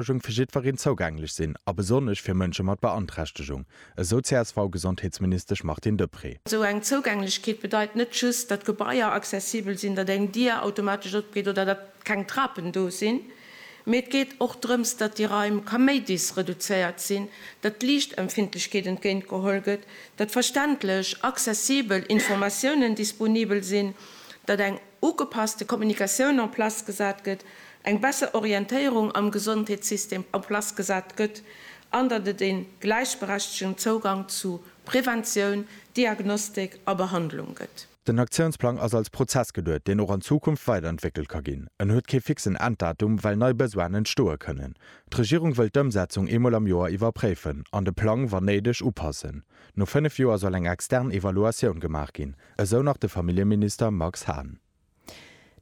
Gesondheetsversuergung fir jiddwereen zougänglech sinn a besonnesch fir Mënsche mat Beanträchtegung, esou d'CSV-Gesondheetsministesch Martine Deprez. Esou eng Zouugänglechkeet bedeit net just, datt Gebaier accessibel sinn, datt eng Dier automatesch opgeet oder datt keng Trapen do sinn, mee et geet och drëms, datt déi Raim kaméidis reduzéiert sinn, datt d'Liichtempfindlechkeet entgéint geholl gëtt, datt verständlech, accessibel Informatiounen disponibel sinn, datt eng. ugepasste Kommunikatioun en place gesat gëtt, eng besser Orientéierung am Gesondheetssystem en place gesat gëtt an datt et ee gläichberechtegen Zougang zu Preventioun, Diagnostik a Behandlung gëtt. Den Aktiounsplang ass als Prozess geduet, deen och an Zukunft weiderentwéckelt ka ginn. En huet kee fixen Enddatum, well nei Besoinen entstoe kënnen. D'Regierung wëll d'Ëmsetzung eemol am Joer iwwerpréifen an de Plang, wann néideg, upassen. No fënnef Joer soll eng extern Evaluatioun gemaach ginn. Esou nach de Familljeminister Max Hahn.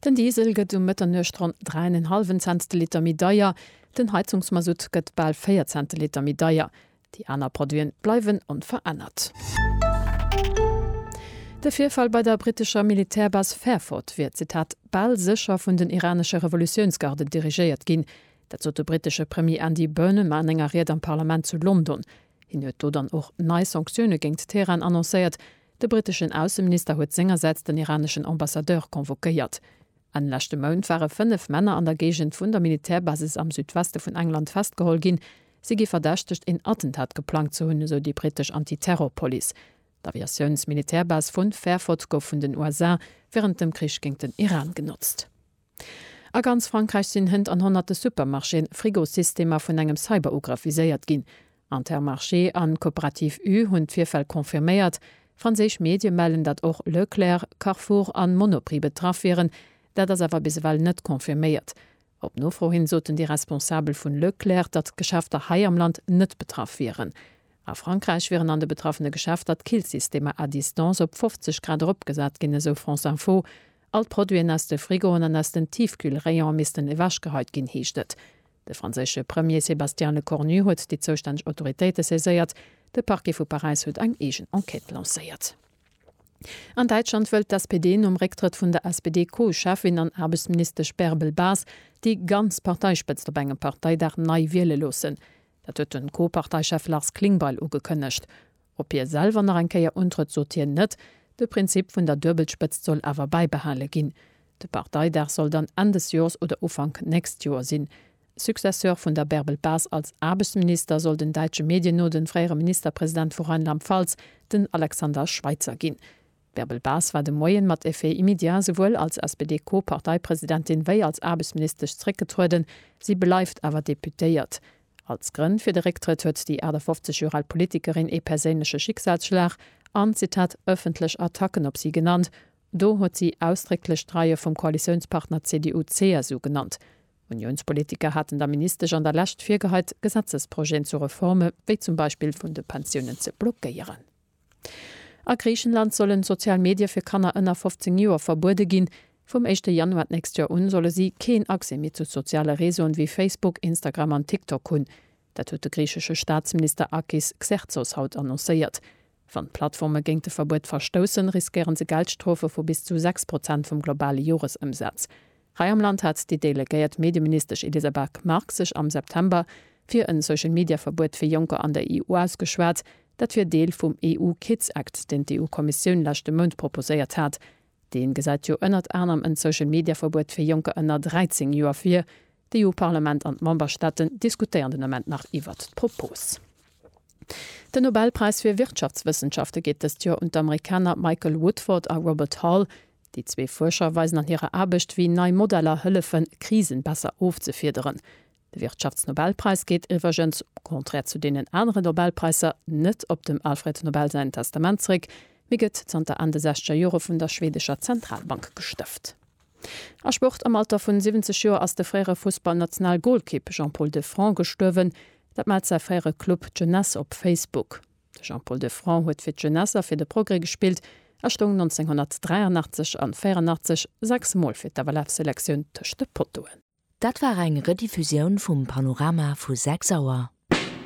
Den Diesel gëtt um Mëtternuecht ronn dräi an en hallwen Cents de Liter méi deier, den Heizungsmasutt gëtt bal véier Cent de Liter méi deier. Déi aner Produiten bleiwen onverännert. De Virfall bei der brittescher Militärbase Fairford wier, Zitat, bal sécher vun den iranesche Revolutiounsgarden dirigéiert ginn. Dat sot de brittesche Premier Andy Burnham an enger Ried am Parlament zu London. Hien huet do dann och nei Sanktioune géingt Teheran annoncéiert, De briteschen Ausseminister huet sengersäits den iraneschen Ambassadeur convoquéiert. Enn leschte Mount ware fënnef Männer an der Géigend vun der Militärbasis am Südweste vun England festgeholl ginn. Si gi verdächtegt, een Attentat geplangt ze hunn, esou déi britesch Anti-Terror-Police. D'Aviatiouns-Militärbase vu Fairford gouf vun den USA wärend dem Krich géint den Iran genotzt. A ganz Frankräich sinn Hënnt an honnerte Supermarchéen, Frigosystemer vun engem Cyberugrëff viséiert ginn. Intermarché an Coopérative U hunn d'Virfäll confirméiert. Franséisch Medie mellen, datt och Leclerc, Carrefour an Monoprix betraff wieren. Dat ass awer bis ewell net confirméiert. Op Nofro hin soten déi Responsabel vun Leclerc, datt d'Geschäfter hei am Land net betraff wieren. A Frankräich wieren an de betraffene Geschäfter d'Killsystemer à distance op 50 Grad eropgesat ginn, esou France Info. All d'Produiten aus de Frigoen an aus den Tiefkühlrayone missten ewechgeheit ginn, heescht et. De franséische Premier Sébastien Lecornu huet déi zoustänneg Autoritéite saiséiert. De Parquet vu Paräis huet eng eegen Enquête lancéiert. An Däitschland wëllt d'SPD nom Récktrëtt vun der SPD-Co-Cheffin an Aarbechtsministesch Bärbel Bas déi ganz Parteispëtzt op engem Parteidag nei wiele loossen. Dat huet de Co-Parteichef Lars Klingbeil ugekënnegt. Op hie selwer nach eng Kéier untrëtt, sot hien net. De Prinzip vun der Duebelspëtzt soll awer bäibehale ginn. De Parteidag soll dann Enn des Joers oder Ufank nächst Joer sinn. Successeur vun der Bärbel Bas als Aarbechtsminister soll den däitsche Medien no de fréiere Ministerpresident vu Rheinland-Pfalz, den Alexander Schweitzer ginn. D'Bärbel Bas war de Moien mat Effet immédiat esouwuel als SPD-Co-Parteipresidentin wéi als Aarbechtsministesch zréckgetrueden. Si bleift awer Deputéiert. Als Grënn fir de Récktrëtt huet déi 58 Joer al Politikerin ee perséinleche Schicksalsschlag an, Zitat, ëffentlech Attacken op si genannt. Do huet si ausdrécklech d'Reie vum Koalitiounspartner CDU-CSU genannt. Uniounspolitiker haten der Ministesch an der Lescht virgeheit, Gesetzesprojeten zu Reforme wéi zum Beispill vun de Pensiounen ze blockéieren. A Griichenland sollen sozial Medie fir Kanner ënner 15 Joer verbuede ginn. Vum éischte Januar d'nächst Joer un solle si keen Accès méi zu soziale Reseauen wéi Facebook, Instagram an TikTok hunn. Dat huet de griichesche Staatsminister Akis Xerxos haut annoncéiert. Wann d'Plattforme géint de Verbuet verstoussen, riskéiere se Geldstrofe vu bis zu 6 Prozent vum globale Joresëmsaz. Hei am Land hat déi delegéiert Medieministesch Elisa Berg-Mark sech am September fir en Social-Media-Verbuet fir Jonker an der EU ausgeschwat. Dat wier Deel vum EU-Kids-Act, deen d'EU-Kommissioun leschte Mount proposéiert hat. Dee gesäit jo ënnert anerem en Social-Media-Verbuet fir Jonker ënner 13 Joer vir. D'EU-Parlament an d'Memberstaaten diskutéieren den Ament nach iwwert d'Propos. Den Nobelpräis fir Wirtschaftswëssenschafte geet dëst Joer un d'Amerikaner Michael Woodford a Robert Hall. Déi zwee Fuerscher weisen an hirer Aarbecht, wéi nei Modeller hëllefen, Krisen besser ofzefiederen. De Wirtschaftsnobelpräis geet iwwergens, au contraire zu deenen anere Nobelpräisser, net op dem Alfred Nobel säin Testament zeréck, mee gëtt zanter Enn de sechzeger Jore vun der schweedescher Zentralbank gestëft. A Sport, Am Alter vun 70 Joer ass de fréiere Fussballnationalgolkipp Jean-Paul Defrant gestuerwen. Dat mellt säi fréiere Club d'Jeunesse op Facebook. De Jean-Paul Defrant huet fir d'Jeunesse a fir de Progrès gespillt a stoung 1983 an 84 sechs Mol fir d'FLF-Selektioun tëscht de Pottoen. Dat war eng Rediffusioun vum Panorama vu 6 Auer.